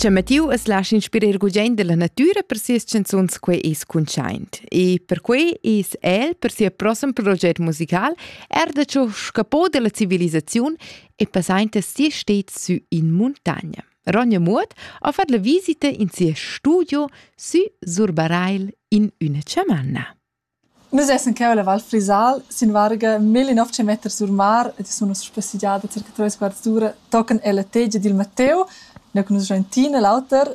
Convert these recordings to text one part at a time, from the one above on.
C'è Mattiu es lascia inspirer gugent della natüra per sias canzuns quei es cuntschaint. E per quei es el, per sia prossem proget musical, er da ciò scapò della civilisaziun e passainta si stets sü in montagna. Ronja Muot ha fatto la visita in sia studio sü Surbareil in üna chamanna. Nus essan cheu ella Val Frisal sin varga millinov kilometers sur mar ed sun uss spassegiada circa treis quarts d'ura tochen ella tegia dil Matteu, nua che nus raintina l'auter.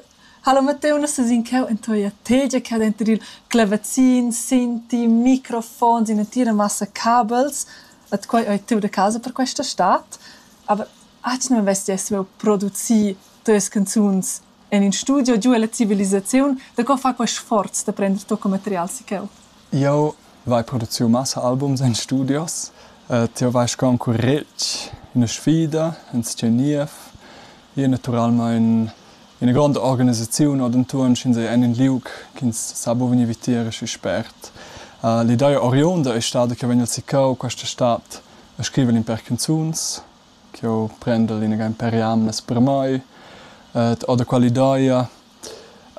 Hallo Matteu, nus sesin cheu en toia tegia ch'ha denter il clavazin, sinti, microfons, in'entira massa cabels ed quei ei tut a casa per questa stad. Aber atgna vess ti ei saviu producir teas canzuns? En in studio giu ella civilisaziun, daco fa quei sforz da prender tucco material si cheu? Jeu vai produciu massa albums en studios. Ti vais con curetg, ina sfida, in sceniev, io naturalmein ina gronda organisaziun ord entuorn sch'ins ei en in liug ch'ins sa buca vegnir vitier schi spert. L'idea oriunda ei stada che vegnel siccau questa stad a scriver in per canzuns. ch'eu prendel inaga ün pè jamnas per mai ed ho da quella ideia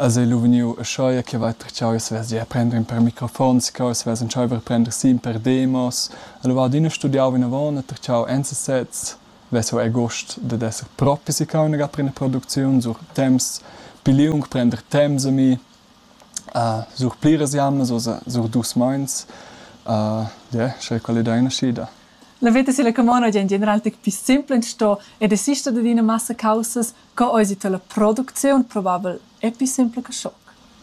es eu lu vegniu uschea chi avais perciau eu savess gia prender ün pèr microfons ca eu savess entschaiver a prender sin per demos. Alura adüna studiau vinavon e perciau enza sez. Vess eu eir gust dad esser propi siccau inaga per üna producziun sur temps pi liung, prender temps a mi, sur pliras jamnas, oza sur dus meins. ie, sche quella ideia nascida. La veta silla camona gie en general tec pli simpla sto e desister dad ina massa caussas co eisi tala producziun probabel era pli simpla che schoc.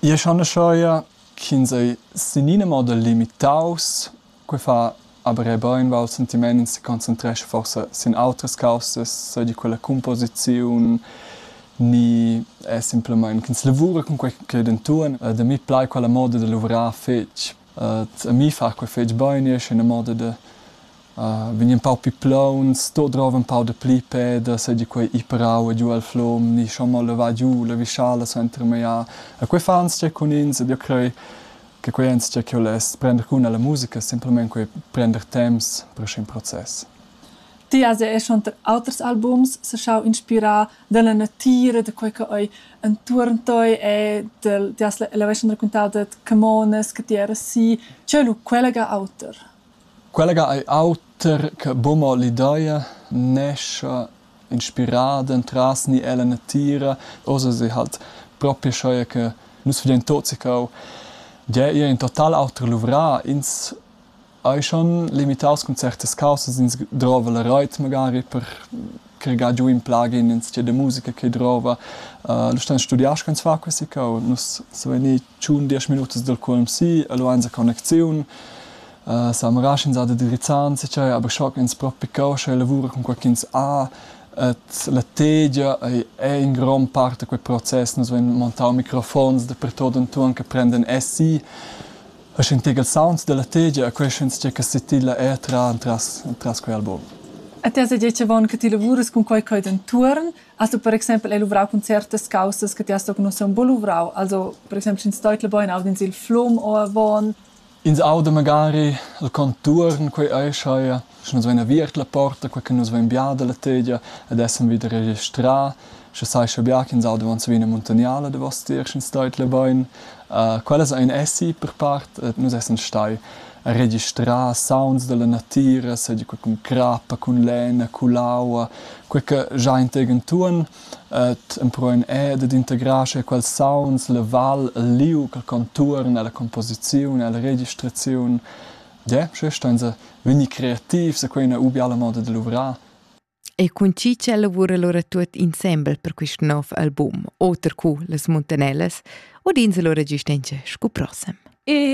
Io schaneschaia ch'ins ei sin ina moda limitaus. Quei fa aber era bein val sentiment, ins concentrescha forsa sin autras caussas, sei di quella composiziun ni è simpelmain ch'ins lavura cun quei ch'ei denton. Da mi plai quella moda da luvrar fetg a mi fa quei fetg bein e esser in moda da vegnir empau pli plauns, sto drov un pau da pli peda, seigi quei ir parau e giu el flom, ni schon mal levar giu la vischala suenter meia. E quei fa enzatgei cun ins ed io crei che quei è enzatgei che io less prender cun alla musica, semplamein quei prender temps per schi in process. Ti has er schon auters albums se schau inspirar dalla natira da quei che ei entuorn tei e del ti has l'avessan raquintau dad camonas che ti eras si cheu lu quella ga auter quella ga ei auter che buca mo l'ideia nescha inspirada entras ni ella natira oz sei halt propi scheu che nus vedein tot sicau gie ir in total auter luvrà ins Ei schon limitaus cun certas caussas, ins drova la reit magari per cregar giu in plugin ins de musica che drova. Uh, lu stan studiar sch'ins fa questi cau. Nus so venir tschun diesch minutas dal QMC, lu ein sa connexiun. Uh, sa marar sch'ins ha da dirizzan, se c'è, aber schock ins propi cau, sche lavura con qualchins a. Et la tegia ei, è in grom parte quei process. Nus vein montau microfons da pertot entuorn che prenden SI E sch'intigl sounds dalla tegia queschens tge che setilla er tra entras, entras quei album. E ti has detg avon che ti lavurs cun quei cheu d'entuorn, has du per exempel hai luvrau cun certas causas che ti has toc nus un po luvrau, also per exempel sch'ins teutla bein aud'ins il flum o avon. Ins auda magari il contuorn, quei ei scheia. sche nus vein aviert la porta, quei che nus vein bia dalla tegia ed essan vida registrà, sche sai sche bia ch'ins auda van savina muntaniala davostier, sch'ins stait la bein. Uh, quellas ein essi per part, et nus essan stai registrà sounds dalla natira, seigi quei cun crappa, cun lena, cun l'aua, quei che già integen tuon et emproen e ed integrar sche quels sounds la val, il liu, il contuorn, la composiziun, la registraziun Ge, sche stan se vegnir creativs e quei ina u biala moda de luvrar. E cun chi ch'el lavura lura tuot insembel per quist nov album, oter cu las Muntanellas, udins lura giustentscha scu prossem. E